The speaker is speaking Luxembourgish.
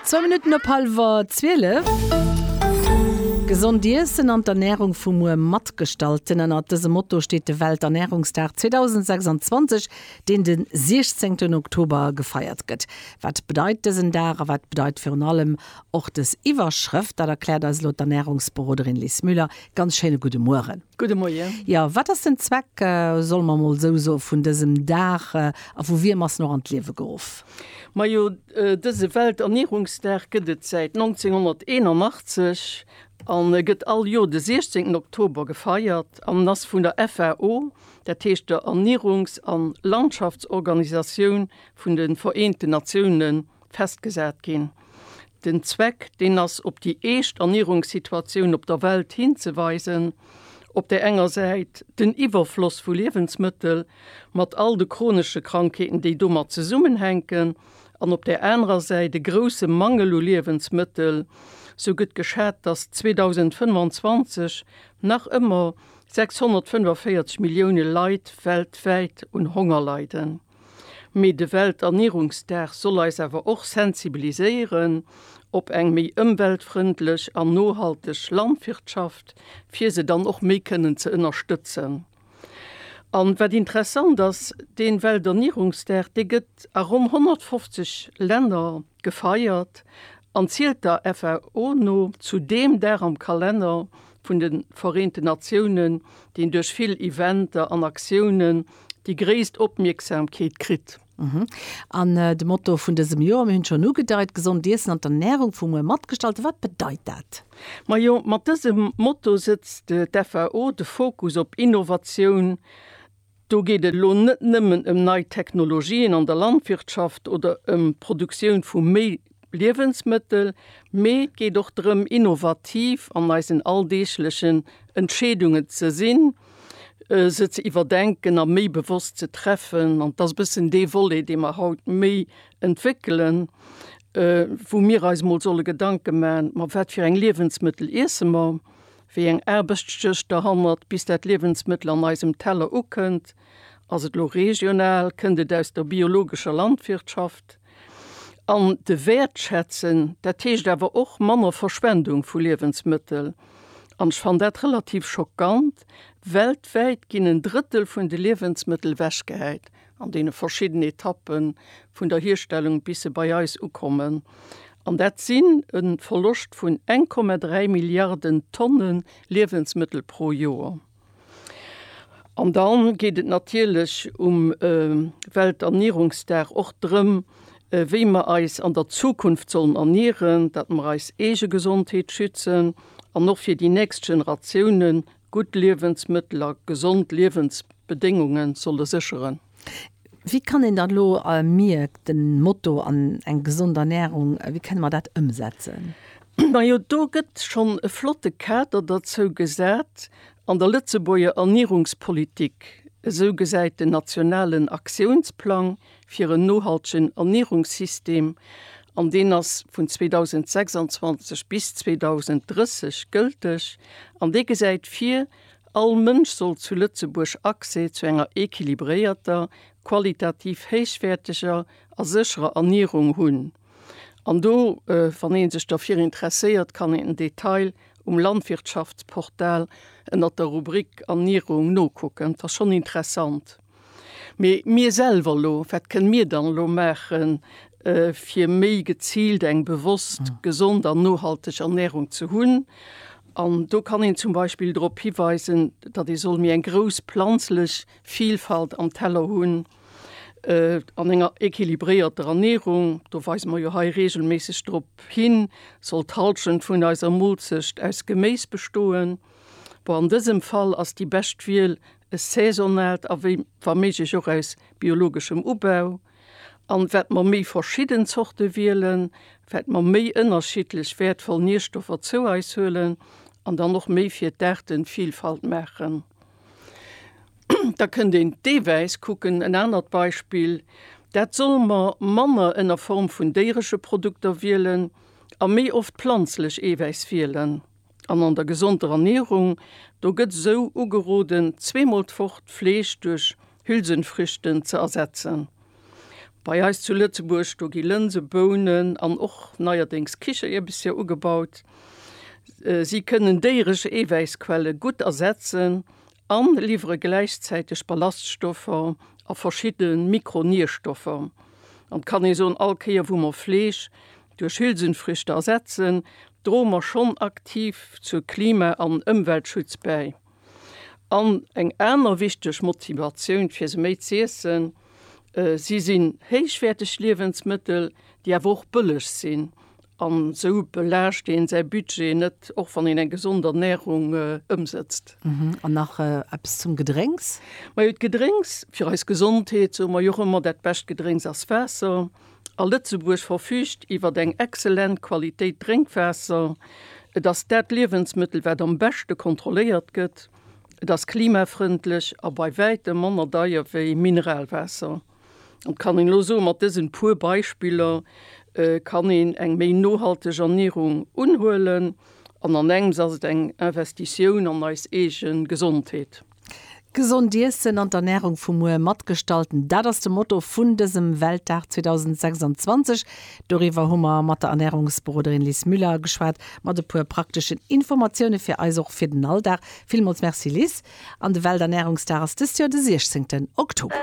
Zwou Minutten op hallwer zwielef. Gesond Iessen an d'Ernärung vu muer matgestalten, ënnert dësem Motto steet de Welternärungsdag 2026, deen de 16 ten Oktober gefeiert gëtt. Wat bedeit dësen Dag a wat bedeit virun allem och des Iwwerschrëft? Dat erkläert eis elo d'Ernärungsberoderin Lis Müller. Ganz schéine gudde Mueren. Gudde Moien. Jo, wat ass den Zweck, solle mer emol esou soen, vun dësem Dag a vu wiem ass en och an d'Liewe geruff? Majo, dëse Welternierungsdag gëtt et säit 1981 an e gëtt all Joer de 16 Oktober gefeiert an en ass vun der FAO, dat heescht der Ernierungs an Landschaftsorganisatioun vun de Vereenten Natiounen, festgesat ginn. Den Zweck, deen ass op déi eescht Ernierungssituatioun op der Welt hinzeweisen, op där enger Säit den Iwwerfloss vu Liewensmëttel mat all de chronesche Krankheeten, déi domat zesummenhänken, an op där anerer Säit e grousse Mangel u Liewensmëttel. Sou gëtt geschat, datt 2025 nach ëmmer 645 Millioune Leit weltwäit un Honger leiden. Mee de Welternierungsdag soll eis awer och sensibiliséieren op eng méi ëmweltfrëndlech an nohalteg Landwirtschaft, fir se dann och méi kënnen ze ënnerstëtzen. An wat interessant ass, dee Welternierungsdag, dee gëtt a ronn 150 Länner, gefeiert an zielt der FAO no zu deem Dag am Kalenner vun de Vereenten Natiounen, deen duerch vill Eventer an Aktiounen déi gréisst Opmierksamkeet kritt. An de Motto vun dësem Joer, mir hunn et schonn ugedeit, Gesond Iessen an d'Ernärung vu muer matgestalten, wat bedeit dat? Majo, mat dësem Motto setzt d'FAO de Fokus op Innovatioun, Do geet et elo net nëmmen ëm nei Technologien an der Landwirtschaft oder ëm d'Produktioun vu méi Liewensmëttel, mee et geet och drëm innovativ an eisen alldeeglechen Entscheedungen ze sinn, se ze iwwerdenken a méi bewosst ze treffen. An et ass e bëssen dee Volet, dee mer haut méi entwéckelen, wou mir eis mol solle Gedanke maachen, ma wat fir eng Liewensmëttel iesse mer? Wéi eng Aarbechtsjëscht der hannert, bis dat Liewensmëttel an eisem Teller ukënnt? Ass et lo regional, kënnt et aus der biologescher Landwirtschaft? An de Wäertschätzen, dat heescht awer och manner Verschwendung vu Liewensmëttel. An ech fann dat relativ schockant, weltwäit ginn en Drëttel vun de Liewensmëttel ewechgehäit. an deene verschidden Etappe vun der Hierstellung bis se bei eis ukommen, an dat sinn e Verloscht vun 1,3 Milliarden Tonne Liewensmëttel pro Joer. An da geet et natierlech um Welternierungsdag och drëm, wéi mer eis an der Zukunft sollen ernieren, datt mer eis eege Gesondheet schützen an och fir déi nächst Generatiounen Gutt Liewensmëttel a gesond Liewensbedéngunge solle sécheren. Wéi kann een dann elo am Mierkt den Motto an eng gesond Ernährung, wéi kënne mer dat ëmsetzen? Majo do gëtt schonn e flotte Kader derzou gesat an der Lëtzebuerger Ernierungspolitik. Esou gesäit den nationalen Aktiounsplang fir en nohaltegen Ernierungssystem an deen ass vun 2026 bis 2030 gëlteg an dee gesäit vir, All Mënsch soll zu Lëtzebuerg Accès zu enger equilibréierter, qualitativ héichwäerteger a sécherer Ernierung hunn. An do, wann ee sech derfir interesséiert, kann een den Detail um Landwirtschaftsportal ënnert der Rubrik Ernierung nokucken. Et ass schonn interessant. Mee mir selwer elo, wat kënne mir dann elo maachen, fir méi geziilt eng bewosst, gesond an nohalteg Ernärung ze hunn? An do kann een zum Beispill drop hiweisen, datt ee soll méi eng grouss planzlech Vilfalt am Teller hunn. An enger equilibréierter Ernärung, do weise mer jo hei reegelméisseg drop hin, soll d'Hallschent vun eiser Moolzecht aus Geméis bestoen. Bon, an dësem Fall ass déi bescht Wiel, e saisonaalt a wéi wa méiglech och aus biologeschem Ubau, an wat mer méi verschidden Zorte wielen, wat mer méi ënnerschiddlech wäertvoll Nierstoffer zou eis huelen an dann och méi fir d'Aartenvielfalt maachen. Da kënnt een deelweis kucken, en anert Beispill, dat solle mer manner ënner Form vun déieresche Produkter wielen a méi oft planzlech Eewäiss wielen. An an der gesonder Ernierung, do gëtt esou ugeroden, zweemol d'Woch d'Fleesch duerch Hülsenfrüchten ze ersetzen. Bei eis zu Lëtzebuerg, do gi Lënse, Bounen an och neierdéngs Kichererbesser ugebaut. Si kënnen déieresch Eewäissquelle gutt ersetzen a liwwere gläichzäiteg Ballaststoffer a verschidde Mikronierstoffer. An kann ee soen, all Kéier wou mer Fleesch duerch Hülsenfrüchte ersetzen, droe mer schonn aktiv zur Klima an Ëmweltschutz bäi. An eng aner wichteg Motivatioun fir se méi z'iessen, Si sinn héichwäerteg Liewensmëttel, déi awer och bëlleg sinn. An esou belaascht een säi Budget net, och wann een eng gesond Ernärung ëmsetzt. An nach eppes zum Gedrénks? Majo, d'Gedrénks fir eis Gesondheet, soe mer jo och ëmmer, dat bescht Gedrénks ass Waasser. A Lëtzebuerg verfüügt iwwer eng exzellent Qualitéit Drénkwaasser. Et ass dat Liewensmëttel, wat am beschte kontrolléiert gëtt. Et ass klimafrëndlech a bei wäitem manner deier wéi Mineralwaasser. An et kann een elo soen, mat dësen puer Beispiller kann een eng méi nohalteg Ernierung unhuelen an an engems ass et eng Investitioun an eis eege Gesondheet. Gesond iessen an d'Ernärung vu muer matgestallten, dat ass de Motto vun dësem Weltdag 2026, Doriwwer hu mer mat der Ernährungsberoderin Lis Müller geschwat, mat e puer prakteschen Informatioune fir eis, och fir den Alldag. Villmools Merci Lis. An de Welternährungsdag ass dëst Joer de 16 Oktober.